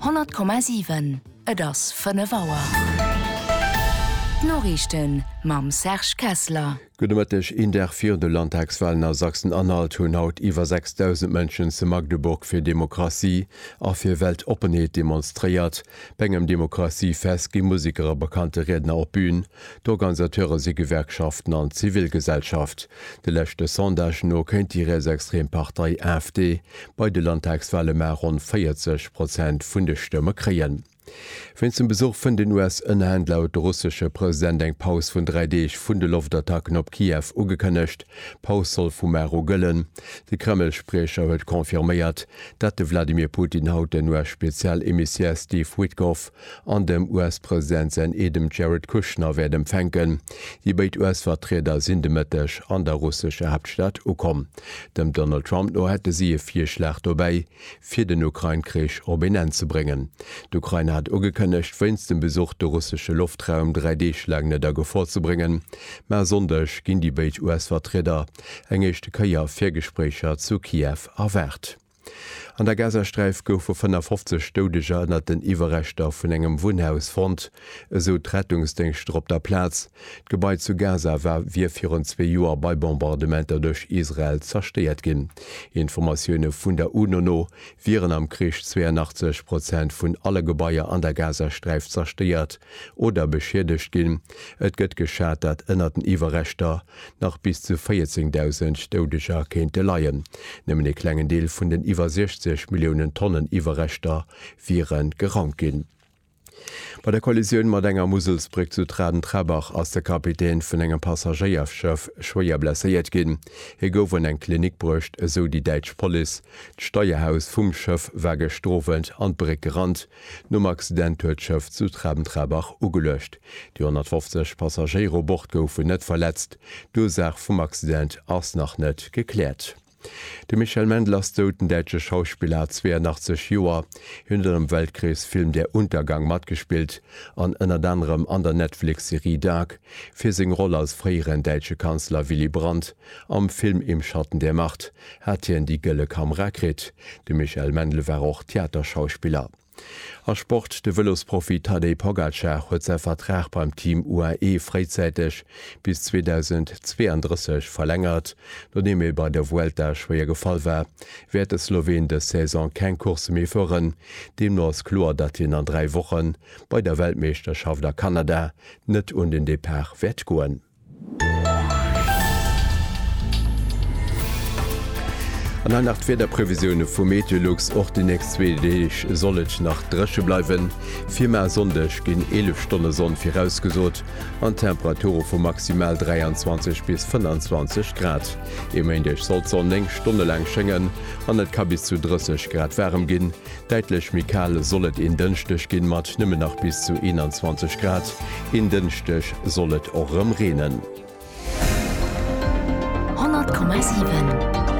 100,7 Et ass 5 Auer. D'Noriichten mam Serge Kessler. Gudde Mëtteg, Een Dag virun de Landtagswalen a Sachsen-Anhalt hunn haut iwwer 6.000 Mënschen zu Magdeburg fir Demokratie a fir Weltoppenheet demonstréiert. Bei engem Demokratie-Fest gi Musiker a bekannte Riedner op d'Bün. D'Organisateure si Gewerkschaften an d'Zivilgesellschaft. De leschte Sondagë no kéint déi rietsextrem Partei AfD bei de Landtagswale mar ronn 40 Prozent vun de Stëmme kréien. Wéinst dem Besuch vun den US-Ënnerhänn laut de russesche President eng Paus vun dräi Deeg vun de Loftattacken op Kiew ugekënnegt. D'Paus soll vu mar u gëllen. De Kreml-Spriecher huet confirméiert, dat de Vladimir Putin haut den US-Spezial-Emissär Steve Witkoff an dem US-President säin Eedem Jared Kushner wäert empfänken. Déi béid US-Vertrieder sinn de Mëtteg an der russescher Haaptstad ukomm. Dem Donald Trump no hätte si e Virschlag dobäi, fir den Ukrain-Krich op een Enn ze bréngen. D'Ukrain hat ugekënnegt, wéinst dem Besuch de russesche Loftraum dräi Deeg laang net a Gefor ze bréngen. Mä e Sonndeg ginn déi béid US-Vertrieder eng éischte Kéier fir Gespréicher zu Kiew erwaart. An der Gazasträif goufe 55 Doudeger ënnert den Iwwerreschter vun engem Wunnhaus fonnt, esou d'Rettungsdéngschter op der Plaz. D'Gebai zu Gaza war wier virun zwee Joer bei Bombardementer duerch Israel zerstéiert ginn. Informatioune vun der UNO no wieren am Krich 82 Prozent vun alle Gebaier an der Gazasträif zerstéiert oder beschiedegt ginn. Et gëtt geschat, dat ënnert den Iwwerreschter Nach bis zu 14.000 Doudeger kéinte leien. Nëmmen ee klengen Deel vun den iwwer 60 Milliounen Tonnen Iwwerreschter wiere gerannt ginn. Bei der Kollisioun mat enger Muselsbréck zu Traden-Trebach ass de Kapitän vun engem Passagéierschëff schwéier blesséiert ginn. Hie gouf an eng Klinik bruecht, esou déi däitsch Police. D'Steierhaus vum Schëff war gestrowent an d'Bréck gerannt, Nom Accident huet d'Schëff zu Traben-Trarbach ugeluecht. Déi 150 Passagéiere u Bord goufen net verletzt. D'Ursaach vum Accident ass nach net gekläert. De Michel Mendl ass dout. Den däitsche Schauspiller hat 82 Joer. Hien huet an dem Weltkriegsfilm Der Untergang matgespillt an ënnert anerem an der Netflix-Serie Dark. Fir seng Roll als fréieren däitsche Kanzler Willy Brandt Am Film Im Schatten der Macht hat hien déi Gëlle Kamera kritt. De Michael Mendl war och Theaterschauspiller a Sport. De Vëlosprofi Tadej Pogacar huet säi Vertrag beim Team UAE fréizäiteg bis 2032 verlängert. Nodeem e bei der Vuelta schwéier gefall war, wäert de Sloween dës Saison keng Coursse méi fueren. Deemno ass kloer, datt hien an dräi Woche bei der Weltmeeschterschaft a Kanada net un den Depart wäert goen. An hei nach d'Wiederprevisioune vu Meteolux, Och déi nächst zwee Deeg soll et nach dréche bleiwen. Firma e Sonndeg ginn 11 Stonne Sonn virausgesot an Temperature vu maximal 23 bis 25 Grad. E Méindeg soll d'Sonn 9 Stonne laang schéngen an et ka bis zu 30 Grad waarem ginn. Däitlech méi kal soll et een Dënschdeg ginn, mat nëmmen nach bis zu 21 Grad. Een Dënschdeg soll et och erëm reenen. 100,7.